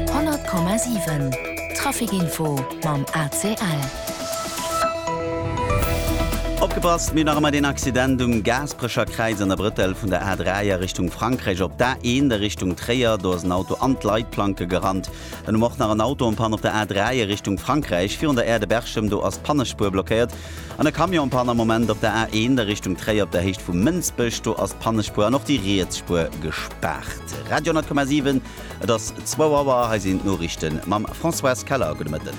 100,7 Trafic Info mam ACL. Opgepasst, mir hunn nach ëmmer deen Accident um Gaasperecher Kräiz an der Brëttel vun der A3 a Richtung Frankräich op d'A1 a Richtung Tréier. Do ass en Auto an d'Leitplanke gerannt. Dunn um och nach en Auto en Panne op der A3 a Richtung Frankräich virun der Aire de Berchem. Do ass d'Pannespuer blockéiert. An e Camion pannt am Moment op der A1 a Richtung Tréier op der Héicht vu Mënsbech. Do ass d'Pannespuer an och déi riets Spuer gespaart. Radio 10,7, et ass zwou Auer. Hei sinn d'Noriichte mam Françoise Keller. Gudde Mëtten.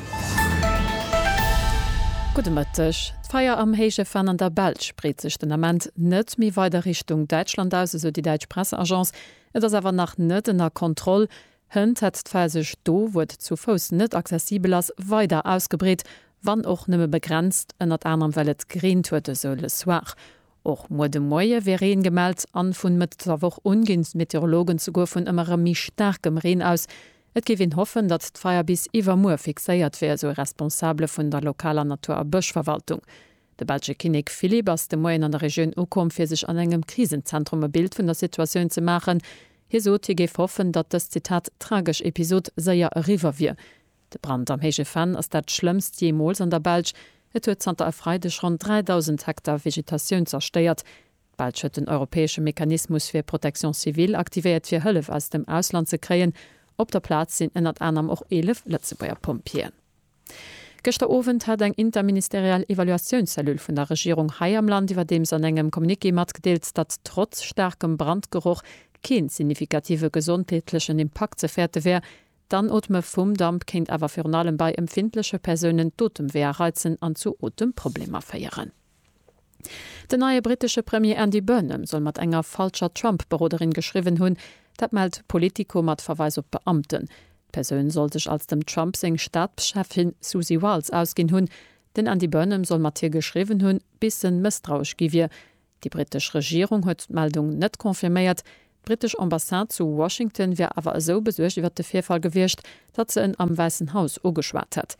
Gudde Mëtteg. D'Feier am héije Venn an der Belsch breet sech den Ament net méi weider Richtung Däitschland aus, esou déi däitsch Presseagence. Et ass awer nach net ënner Kontroll. Hënt hätt d'Far sech do, wou et zu Fouss net accessibel ass, weider ausgebreet, wann och nëmme begrenzt, ënnert anerem well et gereent huet, esou Le Soir. Och muer de Moie wier Reen gemellt an vun Mëtt der Woch un ginn d'Meteorologen souguer vun ëmmer erëm méi staarkem Reen aus. Et géif een hoffen, datt d'Feier bis iwwermuer fixéiert wier, esou e Responsabele vun der lokaler Natur a Bëschverwaltung. De belsche Kinnek Philippe ass de Moien an der Regioun ukomm, fir sech an engem Krisenzentrum e Bild vun der Situatioun ze maachen. Hie sot, hie géif hoffen, datt dës, Zitat, tragesch Episod séier eriwwer wier. De Brand am Héije Venn ass dat schlëmmst jeemools an der Belsch. Et huet zanter e Freideg ronn 3.000 Hektar Vegetatioun zerstéiert. D'Belsch huet den europäesche Mechanismus fir Protection civile aktivéiert, fir Hëllef aus dem Ausland ze kréien. Op der Plaz sinn ënnert anerem och 11 Lëtzebuerger Pompjeeën. Gëschter Owend hat eng interministeriell Evaluatiounscellule vun der Regierung hei am Land iwwerdeems an engem Communiqué matgedeelt, datt trotz staarkem Brandgeroch kee signifikative gesondheetlechen Impakt ze fäerte wär. D'Anootme vum Damp kéint awer virun allem bei empfindleche Persounen d'Otemweeër reizen an zu Otemprobleemer féieren. Den neie brittesche Premier Andy Burnham soll mat enger falscher Trump-Beroderin geschriwwen hunn. Dat mellt Politico mat Verweis op Beamten. D'Persoun soll sech als dem Trump seng Staabscheffin Susie Wiles ausginn hunn. Den Andy Burnham soll mat hir geschriwwen hunn, bis en mësstrauesch gi wier. Déi brittesch Regierung huet d'Meldung net confirméiert. D'brittesch Ambassade zu Washington wier awer esou besuergt iwwer de Virfall gewiescht, datt se en am Wäissen Haus ugeschwat hätt.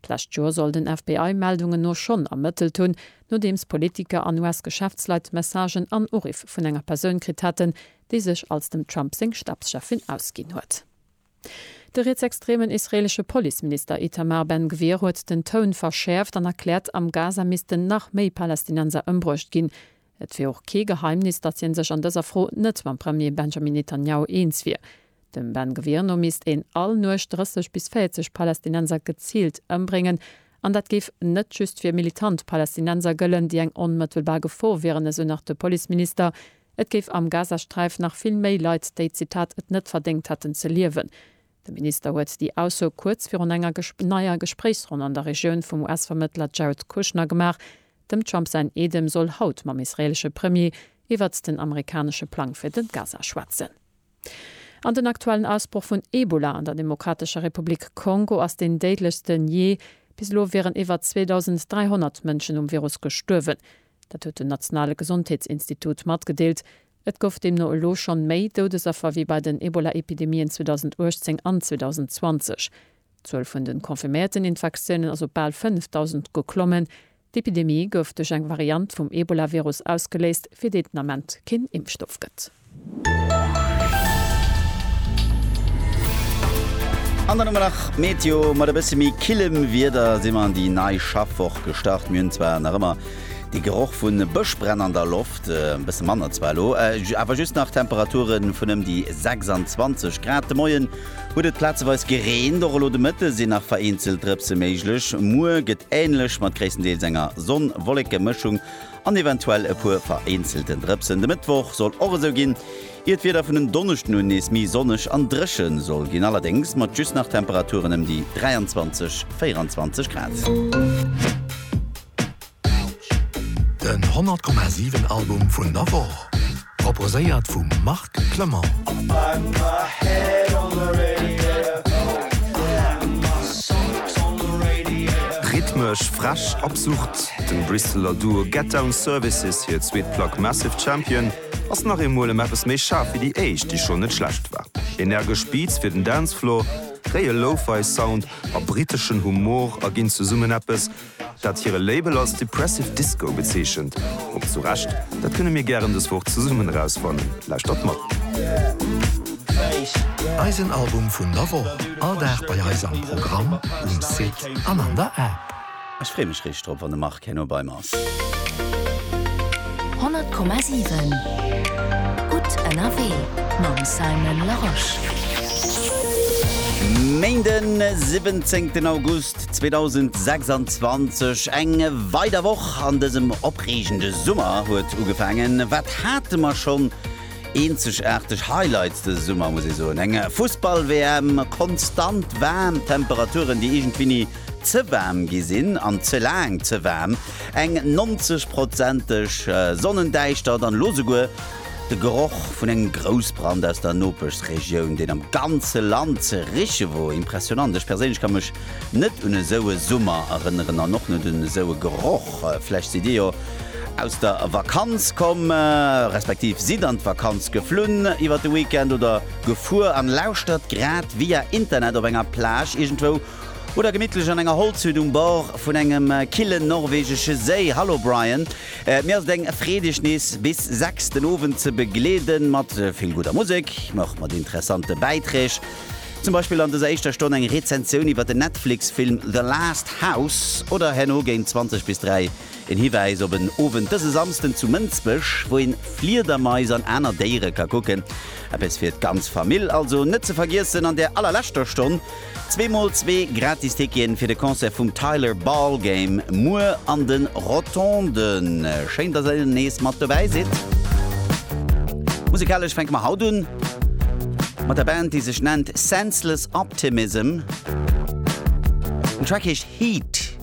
D'lescht Joer soll den FBI Meldungen no schonn ermëttelt hunn, nodeems Politiker an US-Geschäftsleit Messagen an Uriff vun enger Persoun kritt haten, déi sech als dem Trump seng Stabscheffin ausginn huet. De rietsextremen israeelesche Policeminister Itamar Ben-Gvir huet den Toun verschäerft an erkläert, am Gaza missten nach méi Palästinenser ëmbruecht ginn, Et wier och kee Geheimnis, datt hien sech an dëser Fro net mam Premier Benjamin Netanjahu eens wier. Dem Ben Gvir no misst een all Nuecht 30 bis 40 Palästinenser geziilt ëmbréngen. An dat géif net just fir militant Palästinenser gëllen, déi eng onmëttelbar Gefor wieren, esou nach de Policeminister. Et géif am Gazasträif nach vill méi Leit, déi, Zitat, et net verdéngt hätten ze liewen. De Minister huet déi Ausso kuerz virun enger neier Gespréichsronn an der Regioun vum US-Vermëttler Jared Kushner gemaach. Dem Trump säin Eedem soll haut mam israeelesche Premier iwwert den amerikanesche Plang fir de Gaza schwätzen. An den aktuellen Ausbroch vun Ebola an der Demokratescher Republik Kongo ass deen déidlechsten jee. Bis elo wieren iwwer 2.300 Mënschen um Virus gestuerwen. Dat huet den nationale Gesondheetsinstitut matgedeelt. Et gouf deemno elo schonn méi Doudesaffer wéi bei den Ebola-Epidemien 2018 an 2020. D'Zuel vun de confirméierten Infektiounen ass op bal 5.000 geklommen. D'Epidemie gouf duerch eng Variant vum Ebola-Virus ausgeléist, fir déi et den Ament keen Impfstoff gëtt. An der Nummer nach Meteo, mat e bësse méi killem Wieder si mer an déi nei Schaffwoch gestart. Mir hunn zwar nach ëmmer de Geroch vu Bëschbränn an der Loft, e bësse manner zwar elo, awer just nach Temperature vun ëm déi 26 Grad. De Moien huet et plazeweis gereent, och elo de Mëtte sinn nach vereenzelt Drëpse méiglech. Muer gëtt änlech, mat gréisstendeels enger Sonn-Wolleke-Mëschung. an eventuell e puer vereenzelten Drëpsen. De Mëttwoch soll och esou ginn, ier d'Wieder vun en Donneschden un nees méi sonneg an dréche soll ginn, allerdéngs mat just nach Temperaturen ëm déi 23, 24 Grad. Den 100,7 Album vun der Woch. Proposéiert vum Marc Clement. Rhythmesch, frech, absurd, dem Bristeler Duo Get Down Services hir zweet Plack Massive Champion ass nach eemol ëm eppes méi schaarf wéi déi éischt, déi schonn net schlecht war. Energesch Beats fir den Dancefloor, fréie Lo-Fi Sound a briteschen Humor erginn zesummen eppes, dat hire Label als Depressive Disco bezeechent, och zu Recht, dat kënne mir gären dës Woch zesummen erausfannen. Lauschtert mat. Eisen Album vun der Woch all Dag bei eis am Programm, um Site an an der App. Ech free mech richteg drop wann de Marc herno bei mer ass. 100,7 Gutt ënnerwee mam Simon Larosche. Méinden 17 August. 2026, eng weider Woch an dësem opreegende Summer huet ugefaangen. Wat hate mer schonn eenzegaarteg Highlights dëse Summer, muss ee soen. Eng Fussball-WM, konstant waarm Temperaturen, déi iergendwéi ni ze waarm gi sinn an ze laang ze waarm, eng 90 prozenteg Sonnendäischtert an elo souguer De Geroch vun engem Groussbrand aus der Nopeschregioun, deen am ganze Land ze riche wor, impressionant. Ech perséinlech ka mech net un esou e Summer erënneren an och net un esou e Geroch. Vläch sidd Dir jo aus der Vakanz komm, respektiv sidd an d'Vakanz geflunn iwwert de Weekend oder gefuer an lauschtert grad via Internet op enger Plage iergendwou oder gemittlech an enger Holzhütt um Bord vun engem killen norwegesche Séi. Hallo Brian. Et mir ass et eng Freed iech nees bis 6 den Owend ze begleeden mat vill gudder Musek, mä och mat interessante Bäiträg. Zum Beispill an dëser éischter Stonn eng Rezensioun iwwert den Netflix-Film The Last House oder herno géint 20 bis 3 en Hiwäis op en Owend dëse Samsden zu Mënsbech, wou een Fliedermais an aner Déiere ka kucken. Eppes fir d'ganz Famill, also net ze vergiessen an der allerleschter Stonn. Zwee mol zwee gratis Ticketen fir de Concert vum Tyler Ballgame muer an den Rotonden. Schéin dass ell nees mat dobäi sidd. Musikalesch fänke mer haut un mat der Band déi sech nennt Senseless Optimism. Den Track heescht Heat.